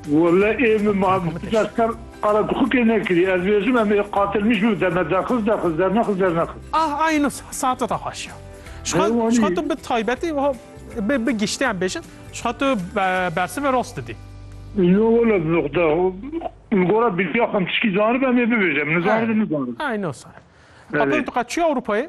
Wele ê min ma ez te qala dixukê nekirî ez bêjim em ê qatil nîş bibin te me derxist derxist dernexist dernexist. Ah ay no saete da haşiya. Şixa tu bi taybetî wiha bi giştî em bêjin şixa tu bersivê rast didî. Yo wele bi nuqda li gora bilgiya xwe em tişkî zanibin em ê bibêjin em nizanibin nizanibin. Ay no sar. Qatoyê tu qet çûyî Ewropayê?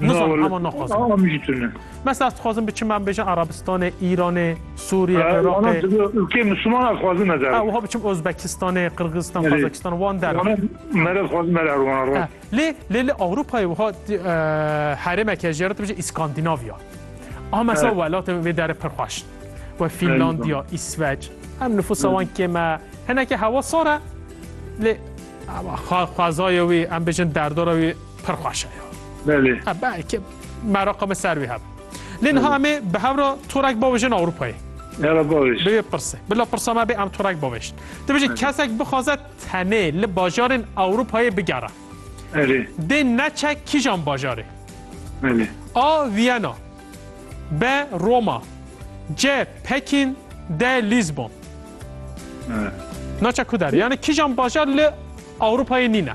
Nizan hema naxwazim. Ama min jî tune. Mesela ez dixwazim biçim em bêjin Arabistanê, Îranê, Sûriyê, Iraqê. Ülkeyê Müslüman ez xwazim ez erim. Wiha biçim Özbekistanê, Qırgızistan, Kazakistan wan derim. Me re dixwazim me erim wan rast. Lê lê li Ewropayê wiha herêmeke jê re dibêje İskandinavya. Ama mesela welatê wê derê pir xweş. We Finlandiya, İsveç. Em nüfusa wan kêm e. Hineke hewa sar e. Lê xwezayê wî em bêjin derdora wî Pir xweş e. Belê. E, belki meraqa me ser wî hebe. Lê niha em ê bi hevra torek bavêjin Ewropayê. Hera bavêj. Bê pirse. Bila pirsa me bê em torek bavêjin. Dibêjin kesek bixwaze tenê li bajarên Ewropayê bigere. Erê. Dê neçe kîjan bajarê. Belê. A. Viyana. B. Roma. C. Pekin. D. Lisbon. Naça ku der. Yani kîjan bajar li Ewropayê nîne.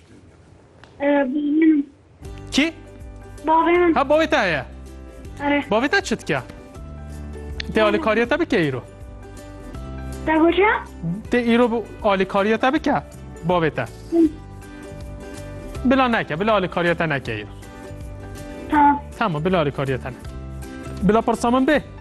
Kî? Bavê min. Ha bavê te heye? Erê. Bavê te çi dike? Tê alîkariya te bike îro? Te goce? Tê îro alîkariya te bike bavê te? Bila neke, bila alîkariya te neke îro. Tamam. Tamam, bila alîkariya te neke. Bila pirsa min bê?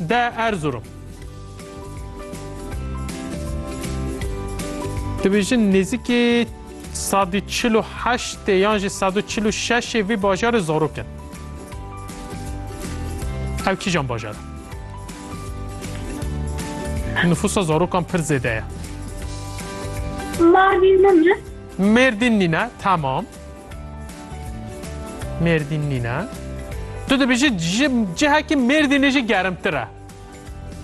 De Erzurum. Dibêjin nêzîkî sadî çil û heştê yan jî sed û çil û şeşê vî bajarê zarok in. Ew kîjan bajar e? Nüfusa zarokan pir zêde ye. Mardin mi? Mêrdîn nîne, tamam. Mêrdîn nîne. Tu dibêjî ji cihekî Mêrdînê jî gerimtir e.